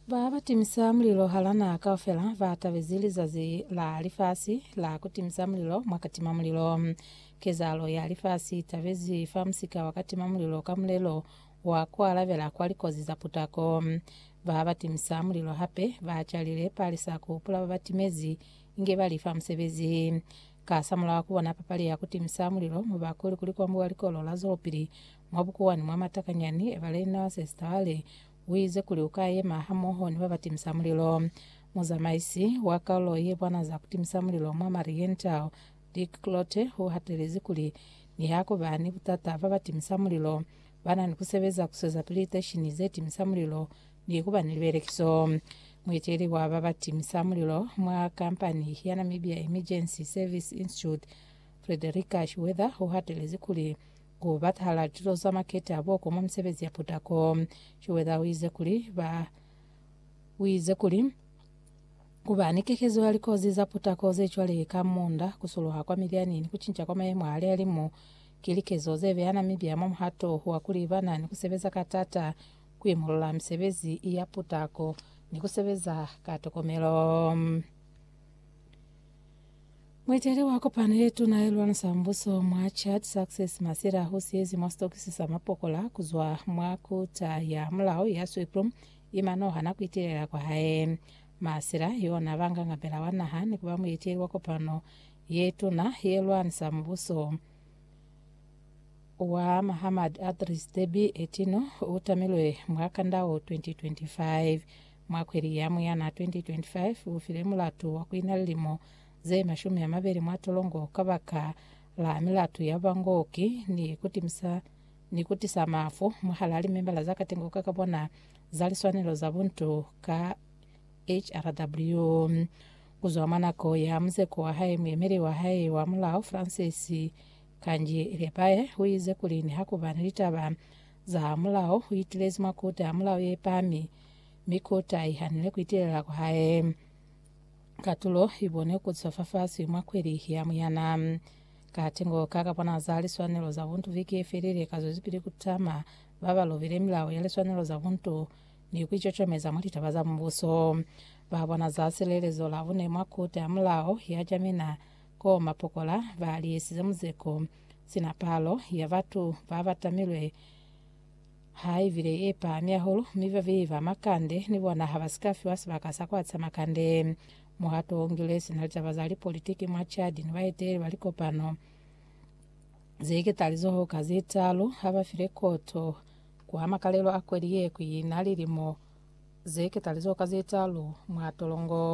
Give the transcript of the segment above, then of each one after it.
Ba ba timisa mulilo hala naha kaufela ba tabezi lizazi la lifasi la ku timisa mulilo mwa katima mulilo. Kezahalo ya lifasi i tabezi fa musika wa katima mulilo ka mulelo wa ku alabela kwa likozi za putako. Ba ba timisa mulilo hape ba calile palisa ku hupula ba ba timezi inge ba li fa musebezi. Kasamulaho wa ku bona papali ya ku timisa mulilo mwa Bakuli kuli kwambuwa likolo la zwelopili, Mwa bukuwani mwa matakanyani, Evelina Sestale uize kuli uka yema hamoho ni babatimisa mulilo. Muzamaisi wa kalulo yebwana za kutimisa mulilo mwa Mariental, Dick Cloete uhatelezi kuli nihakuba ni butata, babatimisa mulilo bana ni kusebeza kuswezapili liteshini zetimisa mulilo ni kuba ni libelekiso. Mueteli wa babatimisa mulilo mwa kampani ya Namibia Emergency Service Institute, Frederica Shiwedha uhatelezi kuli Ku batahala lituto za makete a boko mwa misebezi ya putako. Schroeder u ize kuli, Ba u ize kuli, Ku ba ni kekezo ya likozi za putako ze cwale ka munda, ku suluha kwa milyani, ni ku cinca kwa mayemo a lihalimu ki likezo ze beya Namibia mwa muhato wa kuli ba na ni ku sebeza ka t'ata ku imulula misebezi ya putako ni ku sebeza ka tokomelo. Mueteli wa kopano ye tuna ye lwanisa za mbuso mwa Chad, Success Masila, u siezi mwa sitokisi sa mapokola ku zwa mwa kuta ya mulao ya Sweetbroom i manoha na ku itelela kwa hae. Masila, yo na ba nga ngabela wa naha ni ku ba mueteli wa kopano ye tuna ye lwanisa mubuso wa Mahammad Adris Deby Itno, u tamilwe mwa kanda wo 2025. Mwa kweli ya Muyana 2025, ufile mulatu wa kuina lilimo ze mashumi amabeli mwa tolongo kabaka la milatu ya bangooki ni kutimisa ni kutisa mafu mwahalaa limembala za katengo ka kabona za liswanelo za buntu ka HRW. Kuzwa mwa nako ya muzeko wa hae, muemeli wa hae wa mulao Francis Kanji Lepae uize kuli nihakuba ni litaba za mulao, uitilezi mwa Kota ya Mulao ye Pami, mi kota i hanile ku itelela kwa hae. Katulo i bonwe ku zwa fafasi mwa kweli ya Muyana. Katengo ka ka bona za liswanelo za buntu viki ye felile ka zwezipili ku tama ba ba lobile milao ya liswanelo za buntu ni ku icocomeza mwa litaba za Mubuso. Ba bona za silelezo la bune mwa kota ya mulao ya Jamena koo mapokola ba li esize muzeko, sina palo ya batu ba ba tamilwe Ha i bile ye pahami hahulu, mi babeyi ba makande ni bona ha ba si ka fiwa sibaka sa ku aca makande. Muhato wo ngilwe sina litaba za lipolitiki mwa Chad ni baeteleli ba likopano ze iketalizoho ka ze talu ha ba file koto kwa makalelo a kweli ye ku ina lilimo ze iketalizoho ka ze talu mwa tolongo.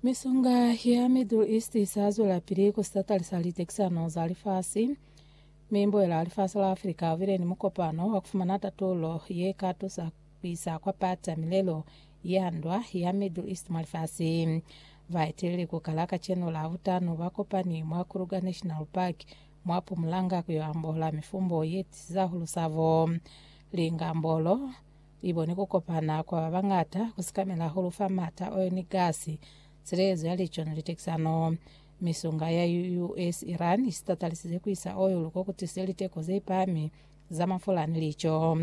Misonga ya Middle East isa zwelapili ku satalisa litekisano za lifasi, mi boela lifasi la Africa ubile ni mukopano wa kufumana tatulo ye ka tusa ku isa kwa pata milelo ya ndwa ya Middle East mwa lifasi. Baeteleli ku kala kacenu la butano ba kopani mwa Kruger National Park mwa Pumulanga ku yo ambola mifumbo ye tiisa hulu sabo. Lingambolo I boni ku kopana kwa ba bañata ku sikamela hahulu fa m'ata, oil ni gasi, silekezo ya lico ni litekisano. Misunga ya US-Iran i sitatalisizwe ku isa oil ko ku tisize liteko ze pahami za mafula ni lico.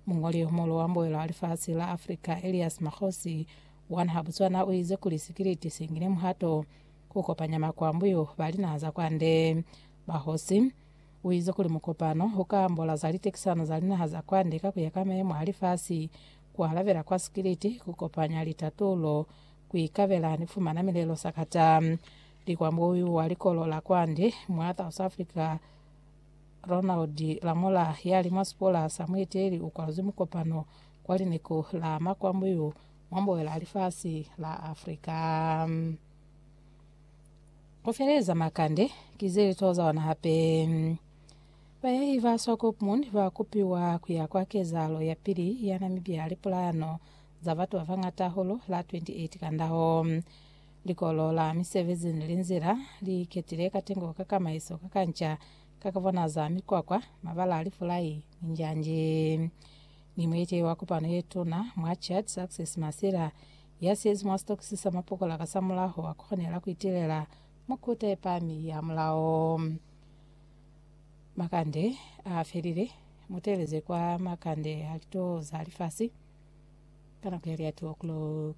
Muñoli yo muhulu wa mbuelo wa lifasi la Africa, Elias Makgosi, wa naha Botswana u ize kuli sikiliti si ngile muhato ku kopanya makwambuyu ba linaha za kwande. Bahosi. Uize kuli mukopano uka ambola za litekisano za linaha za kwande ka kuya ka mayemo a lifasi, kualabela kwa sikiliti, kukopanya litatulo, kuikabela ni kufumana milelo sakata. Likwambuyu wa likolo la kwande mwa South Africa Ronald Lamola yali mwa sipola sa mueteli ukwaluzwi mukopano kwa lineku la makwambuyu mwa mboela lifasi la Africa. Ku feleza makande ki ze li tozawana hape. Bayahi ba Swakopmund ba kupiwa ku ya kwa kezahalo ya pili ya Namibia Lipulano za batu ba bañata hahulu la 28 Kandaho. Likolo la misebezi ni linzila li iketile katengo ka kamaiso ka kanca ka ku bonaza mikwakwa, mabala a lifulai, ni njanji. Ni muiti wa kopano ye tuna mwa Chad, Success Masila, Ya siyezi mwa sitokisi sa mapokola kasamulaho a konela ku itilela mukuta ye pami ya mulao. Makande a felile, mu teeleze kwa makande a lituwo za lifasi ka nako ya lia 2 o'clock.